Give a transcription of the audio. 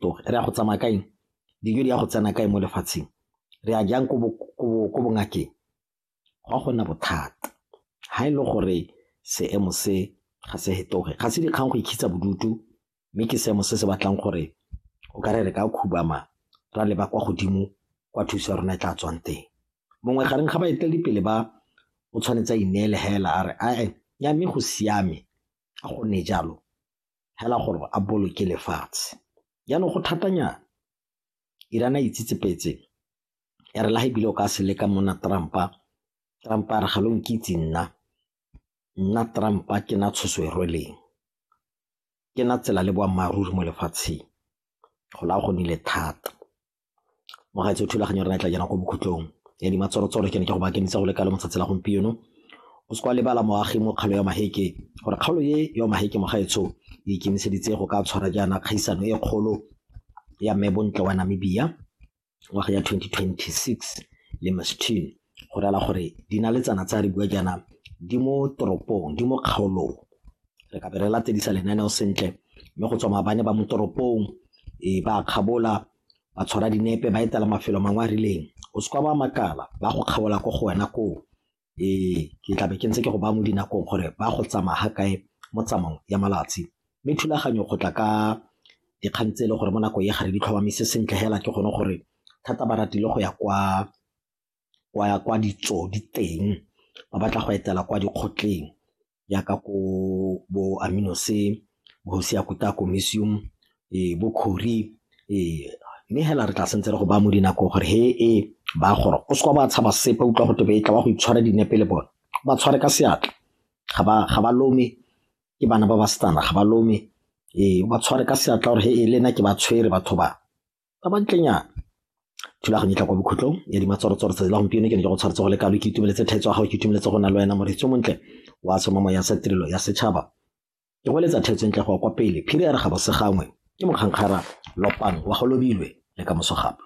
toge re ya go tsamaya kaeng dijo di ya go tsena kae mo lefatsheng re ya jang ko bongakeng go a go nna bothata ga e le gore seemo se ga se hetoge ga se dikgang go ikgitsa bodutu mme ke seemo se se batlang gore o ka re re ka khubama ra leba kwa godimo kwa thuso ya rona e tla tswang teng mongwe gareng ga baeteledipele ba o tshwanetse a ineele hela a re ae ya mme go siame a gonne jalo fela gore a boloke lefatshe. Jaanong go thatanyana, Iran a itsetsepetse ya re le ga ebile o ka se leka monna Trump-a, Trump a re ga lo nkitse nna, nna Trump-a ke na tshoso e rweleng, ke na tsela le boammaaruri mo lefatsheng, go la go nile thata. mo ga tse thulaganyo re tla jana ko bokhutlong ya di matsoratsoro ke ne ke go bakentsa go le kalo motsatsi la gompieno o se kwa lebala moagi mo kgalo ya maheke gore kgaolo ye ya maheke mogaetsho e ikemiseditse go ka tshwara jaana kgaisano e kgolo ya mme bontle wa namibia ngwaga ya 2026 le mastine go rela gore dinaletsana tsa re bua jaana di mo toropong di mo kgaolong re ka be re latedisa lenaneo sentle mme go tswa mabane ba mo toropong e ba kgabola ba tshwara dinepe ba etela mafelo mangwe a rileng o se kwa ba makala ba go kgabola ko go wena koo ee ke tlabe ke ntse ke go ba mo dinakong gore ba go tsamaya ga kae mo tsamong ya malatsi mme thulaganyo go tla ka dikgang tse e le gore mo nako e gare di tlhomamisa sentle fela ke gone gore thata ba ratile go ya kwa wa ya kwa ditso di teng ba batla go etela kwa dikgotleng jaaka ko bo Aminose, bo Seyakuta Comisium, ee, bo Khori ee mme hela re tla sentse re go ba mo dinako gore he e ba gore o seka ba tshaba sepe utlwa go tebe e tla ba go itshwara dinepe le bone ba tshware ka seatla ga ba ga ba lome ke bana ba ba setana ga ba lome ee ba tshware ka seatla gore he e lena ke ba tshwere batho ba ba ba ntlenyana thulaganyo e tla kwa bokhutlong ya dimatshwarotswaro tsatsi la gompieno ke ne ke go tshwaretse go le kalo ke itumeletse tlhaetso ya gago ke itumeletse go na le wena moretso montle wa tshomamo ya sa tirelo ya setšhaba ke go eletsa theetso ntle go kwa pele phiri ya re ga bosegangwe ke mokgankgara lopang wa go lobilwe le ka moso gape